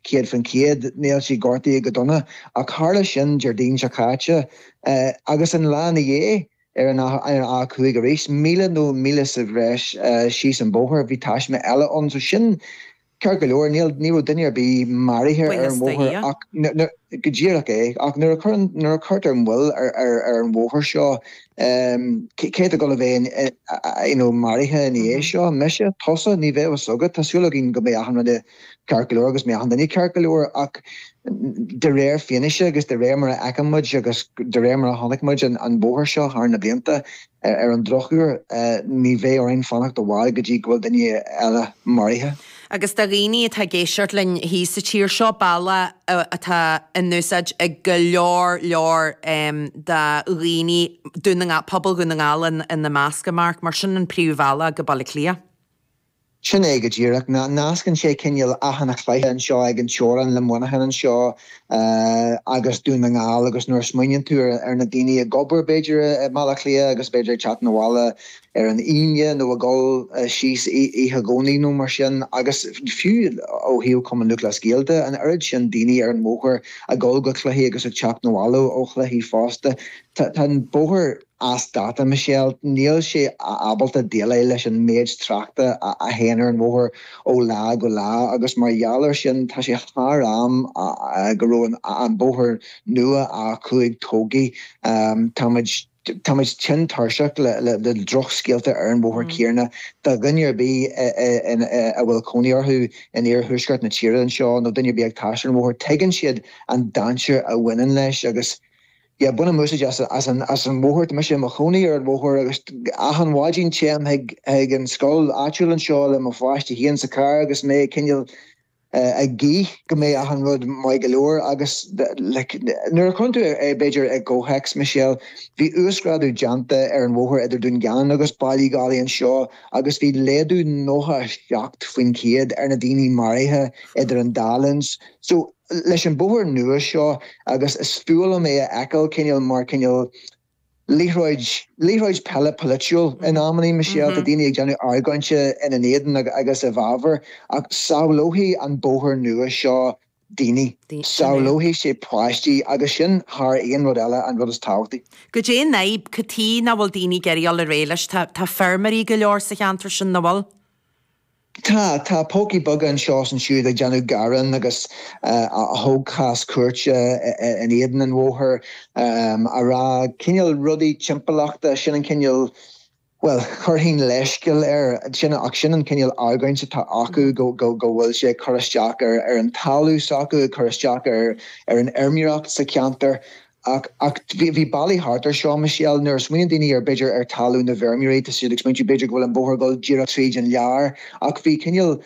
céad faoin chéad. Níl sí gortaithe go dona ach tharla sin Déardaoin seo caite agus an lá ina dhiaidh, ar an 5 arís, míle nó míle sa bhreis síos an bóthar, bhí taisme eile ann so sin, ceart go leor, ní raibh duine ar bith maraithe ar an bhóthar ach go díreach é ach nuair a chuirtear moill ar an bhóthar seo, cé atá ag gabháil a bheith maraithe ina dhiaidh seo? Mise? Tusa? Ní bheidh a fhios agat. Tá súil againn go mbeidh achan rud i. ceart go leor agus go mbeidh achan duine ceart go leor ach de réir fianaise agus de réir mar a fheiceann muid agus de réir mar a chonaic muid an bóthar seo thar na blianta, ar an drochuair, ní bheidh orainn fanacht i bhfad go dtí go bhfuil duine eile maraithe. Agus do dhaoine atá ag éisteacht linn thíos sa tír seo, bealach atá in úsáid ag go leor leor de dhaoine Dún na nGall, pobal Dhún na nGall ina measc, a Mark, mar sin an príomhbhealach go Baile Átha Cliath. Sin é go díreach. Nascann sé cineál Achadh na Cloiche anseo ag an teorainn le Muineachán anseo agus Dún na nGall agus nuair a smaoiníonn tú ar na daoine ag obair b'fhéidir i mBaile Átha Cliath agus b'fhéidir ag teacht chun an bhaile ar an Aoine nó ag dhul síos oíche Dé Domhnaigh nó mar sin agus fiú ó thaobh Chumann Lúthchleas Gael de an oiread sin daoine ar an mbóthar ag dhul go cluichí agus ag teacht chun an bhaile ó chluichí fosta. Tá an bóthar as dáta, Michelle. Níl sé ábalta déileáil leis an méid tráchta a théann ar an bhóthar ó lá go lá agus mar gheall air sin tá sé thar am go raibh an bóthar nua, A5, tógtha. Táimid táimid tinn tuirseach le drochscéalta ar an bhóthar céanna do dhuine ar bith a bhfuil cónaí orthu in iarthuaisceart na tíre anseo nó duine ar bith ag taisteal ar an bhóthar tuigeann siad an dainséar a bhaineann leis agus yeah bainim úsáid as an as an bhóthar tá mise i mo chónaí ar an bhóthar agus achan mhaidin téim chuig chuig an scoil áitiúil anseo le mo pháiste féin sa charr agus mé cineál eh ag guí go mbeidh achan rud maith go leor agus like nuair a chuireann tú é b'fhéidir i gcomhthéacs Michelle bhí uasghrádú déanta ar an bhóthar idir Dún Geanainn agus Baile Uí Dhálaigh anseo agus bhí laghdú 97% ar na daoine maraithe idir an dá linn so leis an bóthar nua seo agus is fuath liom é a fheiceáil cineál, mar cineál liathróid, liathróid peile polaitiúil in amannaí, Michelle, tá daoine ag déanamh argóinte ina éadan agus i bhfabhar ach sábhálfaidh an bóthar nua seo daoine, sábhálfaidh sé páistí agus sin thar aon rud eile an rud is tábhachtaí. Goidé an fhadhb, cad chuige nach bhfuil daoine ag iarraidh dul ar aghaidh leis? Tá, tá feirmeoirí go leor sa cheantar sin, nach bhfuil? Tá. Tá pócaí beaga anseo is ansiúd ag déanamh gearáin agus a thóg cás cúirte in éadan an bhóthair ag rá. Cineál rudaí timpeallachta, sin an cineál, bhuel, chuirfinn leithscéal air sin ach sin an cineál argóint atá acu, go bhfuil sé ag cur isteach ar an talamh s'acu, ag cur isteach ar an fheirmeoireacht sa cheantar. Ach bhí bealaí thart ar seo, Michelle. Nuair a smaoiníonn daoine ar b'fhéidir ar talamh na bhfeirmeoirí, tá siad ag smaointiú b'fhéidir go bhfuil an bóthar ag dul díreach tríd an lár. Ach bhí cineál,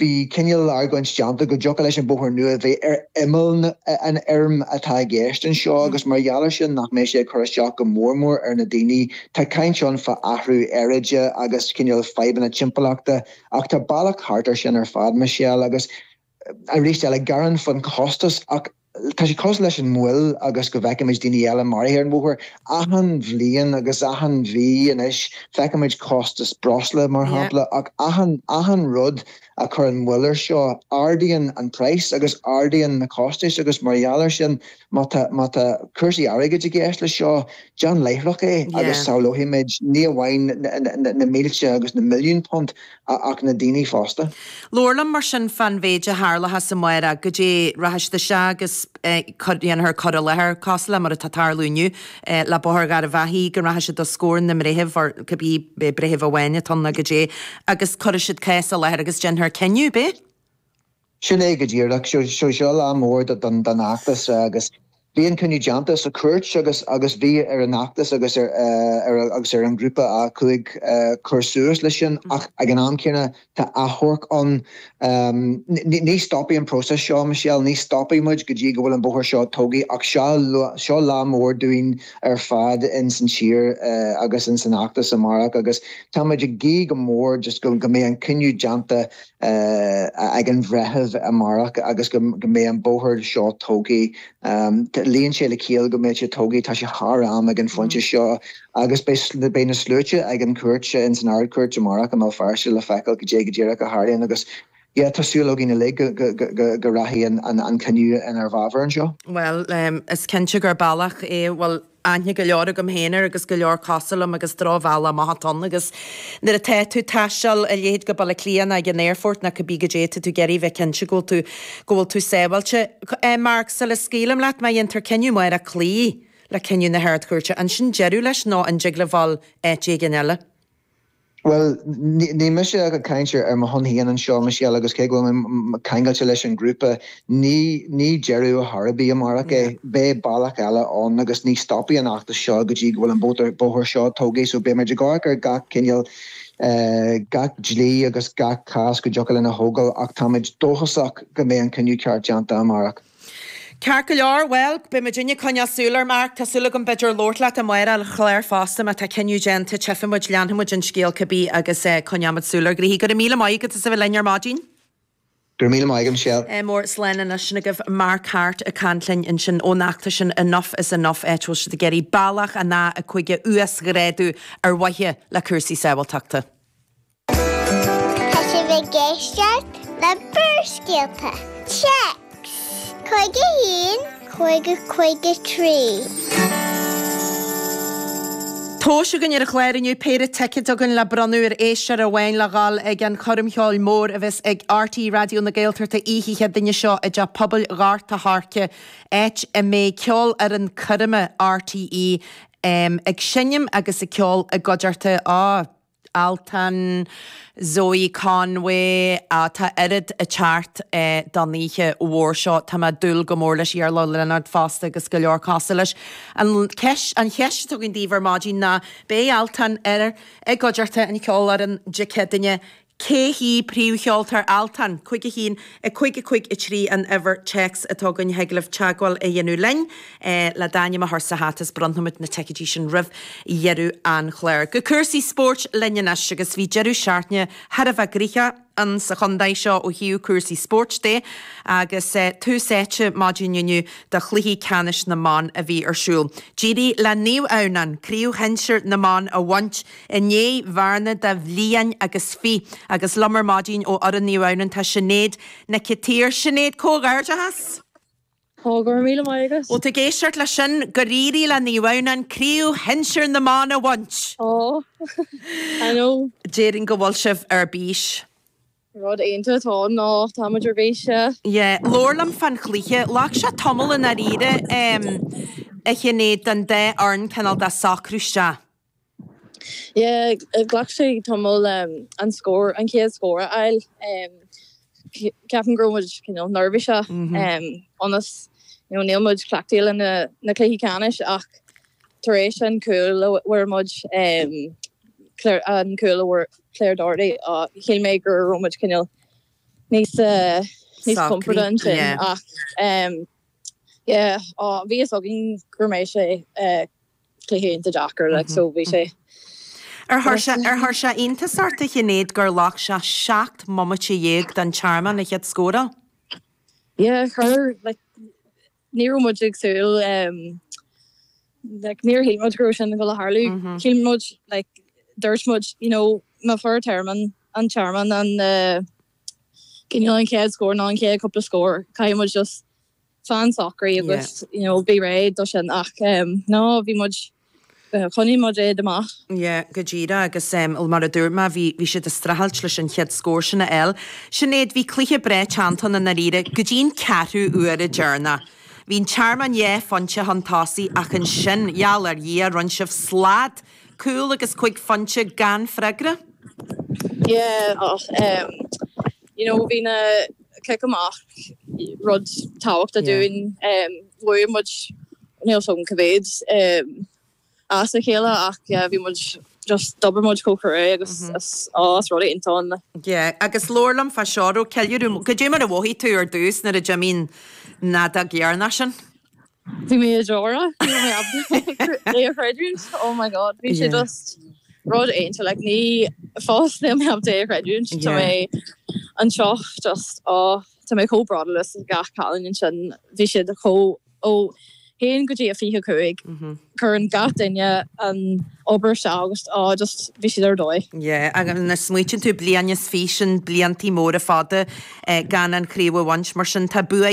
bhí cineál argóint déanta go dtiocfadh leis an bóthar nua bheith ar imeall an fheirm atá i gceist anseo agus mar gheall ar sin nach mbeidh sé ag cur isteach go mór mór ar na daoine. Tá caint ann fá athrú aeráide agus cineál fadhbanna timpeallachta ach tá bealach thart ar sin ar fad, Michelle, agus Arís eile, gearán faoin chostas, ach tá sé costasach leis an moill agus go bhfeicimid daoine eile maraithe ar an bhóthar. Achan bhliain agus achan mhí anois feicimid costas breosla, mar shampla, ach achan rud a chuireann moill air seo, ardaíonn an praghas agus ardaíonn na costais agus mar gheall air sin, má tá cúrsaí airgid i gceist leis seo, déan láithreach é agus sábhálfaimid ní amháin na mílte agus na milliúin punt ach na daoine fosta. Labhair liom mar sin fán mhéid a tharlóchas amárach, cad é, rachaidh siad isteach agus déanfar cur i láthair cosúil le mar atá ag tarlú inniu le Bóthar Gharbhachaidh go rachaidh siad os comhair na mbreitheamh or cibé breitheamh amháin atá ann nó cad é agus cuirfidh siad cás i láthair agus déanfar cinneadh, ab ea. Sin é go díreach. Seo, seo lá mór don fheachtas agus bhí an cinneadh déanta sa chúirt agus bhí ar an fheachtas agus ar an grúpa A5 cur suas leis sin ach ag an am céanna tá achomharc ann. Ní stopfaidh an próiseas seo, Michelle, ní stopfaidh muid go dtí go bhfuil an bóthar seo tógtha ach seo lá mór dúinn ar fad in san tír agus in san fheachtas amárach agus tá muid ag guí go mór just go mbeidh an cinneadh déanta ag an bhreitheamh amárach agus go mbeidh an bóthar seo tógtha. Luíonn sé le ciall go mbeidh sé tógtha, tá sé thar am ag an phointe seo agus beidh na sluaite ag an chúirt ins an Ard-Chúirt amárach i mBéal Feirste le feiceáil cad é go díreach a tharlaíonn agus yeah tá súil againn uilig go rachaidh an cinneadh inár bhfabhar anseo. Bhuel, is cinnte gur bealach é a bhfuil aithne go leor agam féin air agus go leor cosúil liom agus drochbhealach amach atá ann agus nuair atá tú ag taisteal a leithéid go Baile Átha Cliath nó ag an aerfort nó cibé cad é, tá tú ag iarraidh bheith cinnte go bhfuil tú go bhfuil tú sábháilte. Mark, Sula scaoilim leat, má dhéantar cinneadh amárach cloí le cinneadh na hArd-Chúirte, an sin deireadh leis nó an dtig libh a ghabháil áit éigin eile? Bhuel, níl mise ag caint ar mo shon féin anseo, a Mhichelle, agus cé go bhfuil mé ceangailte leis an ghrúpa, ní deireadh ar bith amárach é. Beidh bealach eile ann agus ní stopfaidh an feachtas seo go dtí go bhfuil an bóthar seo tógtha, so beidh muid ag amharc ar gach cineál, gach dlí agus gach cás go dtiocfadh linn a thógáil ach táimid dóchasach go mbeidh an cinneadh ceart déanta amárach. Ceart go leor, bhuel, beidh muidinne ag coinneáil súil air Mark, tá súil agam b'fhéidir labhairt leat amárach ar an chlár fosta, má tá cinneadh déanta tchífidh muid, leanfaidh muid an scéal cibé agus coinneoimid súil ar ghnoithe. Go raibh míle maith agat as a bheith linn ar maidin. Go raibh míle maith agat, Michelle. Mór slán anois sin agaibh Mark Harte ag caint linn ansin ón fheachtas sin Enough is Enough áit a bhfuil siad ag iarraidh bealach an a a cúig a uasghrádú ar mhaithe le cúrsaí sábháilteachta. Tá sibh ag éisteacht le Barrscéalta, text, 51 5053. Tomhais againn ar an gclár inniu péire ticeid againn le bronnadh ar éisteoir amháin le dhul ag an choirm cheoil mór a bheas ag RTÉ Raidió na Gaeltachta oíche Chéadaoin seo i dTeach Pobail Ghort a' Choirce áit a mbeidh Ceolfhoireann Coirme RTÉ ag seinm agus ag ceol i gcuideachta a Altan, Zoe Conway, tá oiread thart don oíche mhór seo. Tá mé ag dúil go mór leis. Iarla Ó Lionáird fosta agus go leor cosúil leis. An cheist, an cheist atá againn daoibh ar maidin ná, beidh Altan ar i gcuideachta an cheolfhoireann Dé Céadaoine. Cé hí príomhcheoltóir Altan? Cúig a haon. 5 5 3 An uimhir téacs atá againn a thig libh teagmháil a dhéanamh linn le d'ainm a chur sa hata is bronnfaimid na ticeidí sin roimh dheireadh an chláir. Go cúrsaí spóirt linn anois agus bhí deireadh seachtaine thar a bheith gnoitheach ann sa chontae seo ó thaobh cúrsaí spóirt de agus tús áite maidin inniu do chluichí ceannais na mban a bhí ar siúl. D'éirigh le Naomh Adhamhnán craobh shinsir na mban a bhaint. I ndiaidh bhearna de bhliain agus fiche agus liom ar maidin ó fhoireann Naomh Adhamhnán tá Sinéad Nic Itír. Sinéad, comhghairdeachas! Tá, go raibh míle maith agat! Bhuel tá tú ag éisteacht leis sin gur éirigh le Naomh Adhamhnáin craobh shinsir na mban a bhaint! Aww, I know. Déarfainn go bhfuil sibh ar bís. Rud iontach atá ann ná táimid ar bís. Yeah. Labhair liom fán chluiche. Ghlac sé tamall i ndáiríre, em, a Shinéad, don dá fhoireann cineál de socrú isteach. Yeah, ghlac sé tamall an scór, an chéad scór a fháil. Ceapaim go raibh muid cineál neirbhíseach ionas nó níl muid cleachtaithe leis na cluichí ceannais ach tar éis an chúil a fuair muid, an cúl a fuair Claire Doherty, shíl mé go raibh muid cineál níos compordaí ansin ach yeah, bhí a fhios againn go mbeadh sé. cluiche iontach deacair like so bhí sé Ar chuir sé iontas ort a Shinéad gur ghlac sé seacht mbomaite dhéag don Tearmann a chéad scóráil? Yeah chuir like ní raibh muid ag súil like níor shíl muid go raibh sin ag gabháil a tharlú shíl muid like dúirt muid you know má fuair Tearmann an Tearmann an eh cineál an chéad scór nó an chéad cúpla scór caithfidh muid just fan socraí agus you know bí réidh do sin ach nó bhí muid choinnigh muid iad amach. Yeah go díreach agus well mar a dúirt mé bhí bhí siad ag streachailt leis an chéad scór sin a fháil. Sinéad bhí cluiche breá teannta ann dáiríre go dtí an ceathrú uaire deireanach. Bhí an Tearmann dhá phointe chun tosaigh ach ansin gheall ar Dhia rinne sibh slad cúl agus cúig phointe gan freagra. Yeah ach you know bhí na cic amach rud tábhachtach dúinn. Bhuaigh muid, níl 's agam cé mhéad as a chéile ach yeah bhí muid just, d'oibir muid chomh cruaidh agus is rud iontach ann. Yeah, agus labhair liom fá seo, a raibh ceiliúradh, cad é mar a mhothaigh tú ar dtús nuair a d'imigh an fheadóg dheireanach sin? Bhí mé ag deora. É a chreidiúint oh my god bhí sé just rud iontach like go fóill níl mé ábalta é a chreidiúint tá mé anseo just oh tá mé chomh bródúil as gach cailín ansin bhí siad chomh ó a haon go dtí a fiche cúig cuireann gach duine an obair isteach agus oh just bhí siad ar dóigh. Yeah agus nuair a smaoitíonn tú bliain is fiche sin bliantaí móra fada gan an chraobh a bhaint mar sin tá bua